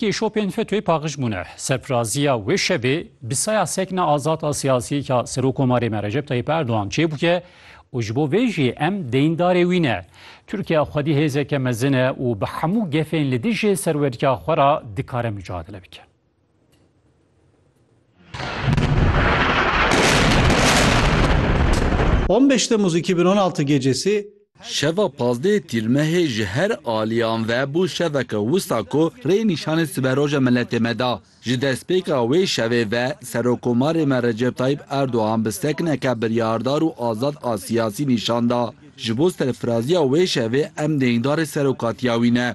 Kêşopên FETÖ'yê paqiş bûne. Serfiraziya wê şevê bi saya sekna azad a siyasî ya Serokomarê me Recep Tayyîp Erdogan çêbûke û ji bo vê jî em deyndarê wî ne. Tirkiye xwedî hêzeke mezin e û bi hemû gefên li dijî serweriya xwe re dikare micadele bike. On beş Temmuz 2016 gecesi Şeva pazdeh Tîrmehê ji her aliyan ve bû şeveke wisa ku rê nîşanê siberoja miletê me da. Ji destpêka wê şevê ve Serokomarê me Recep Tayîp Erdogan bi sekineke biryardar û azad a siyasî nîşan da. Ji bo serfiraziya wê şevê em dêngdarê serokatiya wî ne.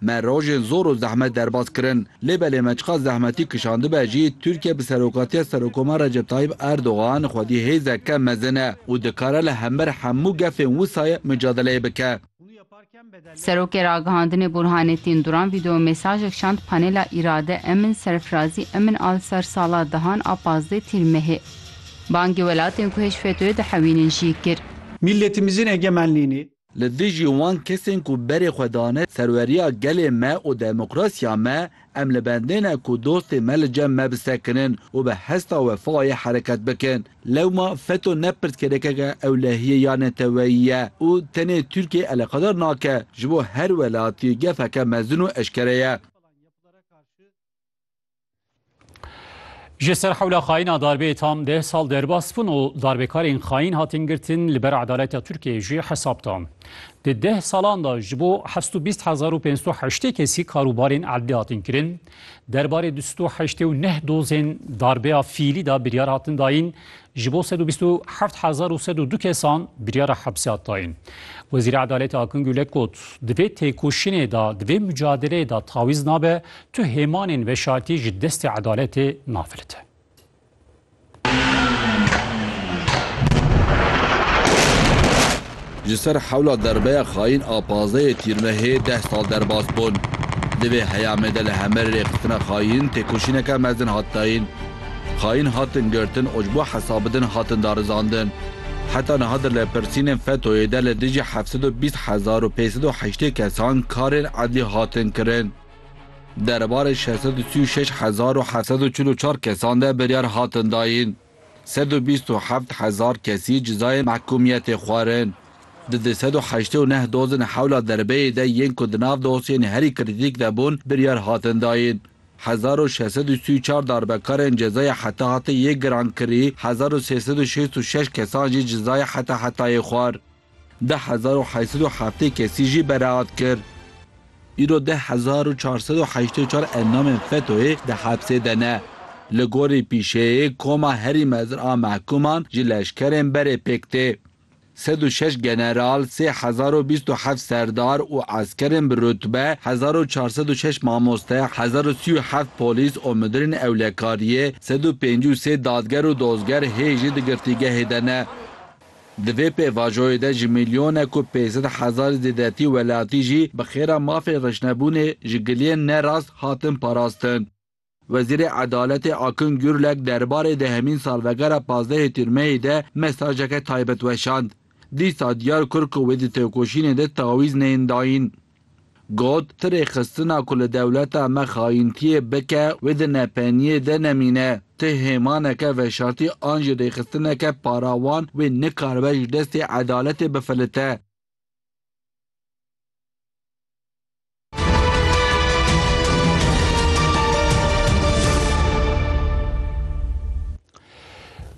Me rojên zor û zehmet derbas kirin. Lê belê me çiqas zehmetî kişandibe jî, Tirkiye bi serokatiya Serokomar Recep Tayib Erdogan xwedî hêzeke mezin e û dikare li hember hemû gefên wisayê micadeleyê bike. Serokê Ragihandinê Burhanettin Duran vîdeomesajek şand panêla Îrade Emin Serfirazî Emin Al Sersala Dihan a pazdeh Tîr Mehê. Bangê welatên ku hêj FETÖ'yê dihewînin jî kir. Mîlletîmizin egemenlînî, Li dijî wan kesên ku berê xwe dane serweriya gelê me û demokrasiya me, em li bendê ne ku dostên me li cem me bisekinin û bi hesta wefayê hereket bikin. Lewma FETÖ ne pirsgirêkeke ewlehiyê ya neteweyî ye û tenê Tirkiyeyê eleqedar nake, ji bo her welatî gefeke mezin û eşkere ye. Ji ser hewla xayîna darbeyê tam deh sal derbas bûn û darbekarên xayîn hatin girtin li ber edaleta Tirkiyeyê jî hesab dan. Di deh salan de ji bo heft û bîst hezar û pênc sed û heştê kesî karûbarên erdê hatin kirin. Derbarê du sed û heştê û neh dozên darbeya fîlî de biryar hatin dayîn. Ji bo sed û bîst û heft hezar û sed û du kesan biryara hepsê hat dayîn. Wezîra Edaletê Akın Gülek got, Di vê têkoşînê de, di vê mucadeleyê de tawîz nabe Tu hêmanên veşartî ji destê edaletê nafilite. Ji ser hewla derbeya xayîn a pazdehê Tîrmehê deh sal derbas bûn. Di vê heyamê de li Hemerê rêxistina xayîn têkoşîneke mezin hat dayîn. Xayîn hatin girtin û ji bo hesabidin hatin darizandin. Heta niha di lêpirsînên FETO'yê de li dijî heft sed û bîst hezar û pênc sed û heştê kesan karên edlî hatin kirin. Derbarê şeş sed û sî û şeş hezar û heft sed û çil û çar kesan de biryar hatin dayîn. Sed û bîst û heft hezar kesî cizayên mehkûmiyetê xwarin. Di du sed û heştê û neh dozên hewla derbeyê de yên ku di nav dosyeyên herî krîtîk de bûn biryar hatin dayîn. Hezar û şeş sed û sî û çar darbekarên cezaya heta hetê yê girankirî, hezar û sê sed û şêst û şeş kesan jî cizaya heta hetayê xwar. Deh hezar û heşt sed û heftê kesî jî beraat kir. Îro deh hezar û çar sed û heştê û çar endamên FETO'yê di hepsê de ne. Li gorî pîşeyê koma herî mezin a mehkûman ji leşkerên berê pêk tê. Sed û şeş general, sê hezar û bîst û heft serdar û eskerên bi rutbe, hezar û çar sed û şeş mamoste, hezar û sî û heft polîs û midirên ewlekariyê, sed û pêncî û sê dadger û dozger hê jî di girtîgehê de ne. Di vê pêvajoyê de ji mîlyonek ku pênc sed hezar zêdetî welatî jî bi xêra mafên reşnebûnê ji giliyên ne rast hatin parastin. Wezîrê Edaletê Akın Gürlek derbarê dehemîn salvegera pazdehê Tîrmeyê de mesajeke taybet weşand. Dîsa diyar kir ku wê di têkoşînê de tawîz neyên dayîn. Got, Ti rêxistina ku li dewleta me xayintiyê bike wê di nepeniyê de nemîne. Ti hêmaneke veşartî an jî rêxistineke parawan wê nikaribe ji destê edaletê bifilite.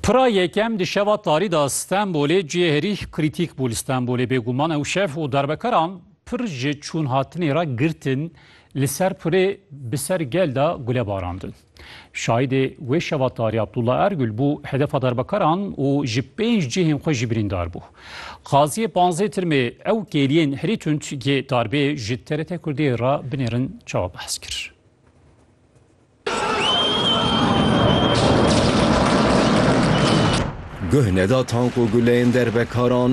Pira yekem di şeva tarî de Stenbolê cihê herî krîtîk bû li Stenbolê. Bêguman ew şev û darbekaran pir ji çûnhatinê re girtin li ser pirê bi ser gel de gule barandin. Şahîdê wê şeva tarî Abdullah Ergul bû hedefa darbekaran û ji pênc cihên xwe jî birîndar bû. Qaziyê panzdeh tirmê ew kêliyên herî tund yê darbê ji TRT Kurdiyê re binêrin çawa behs kir. Guh neda tank û guleyên derbekaran,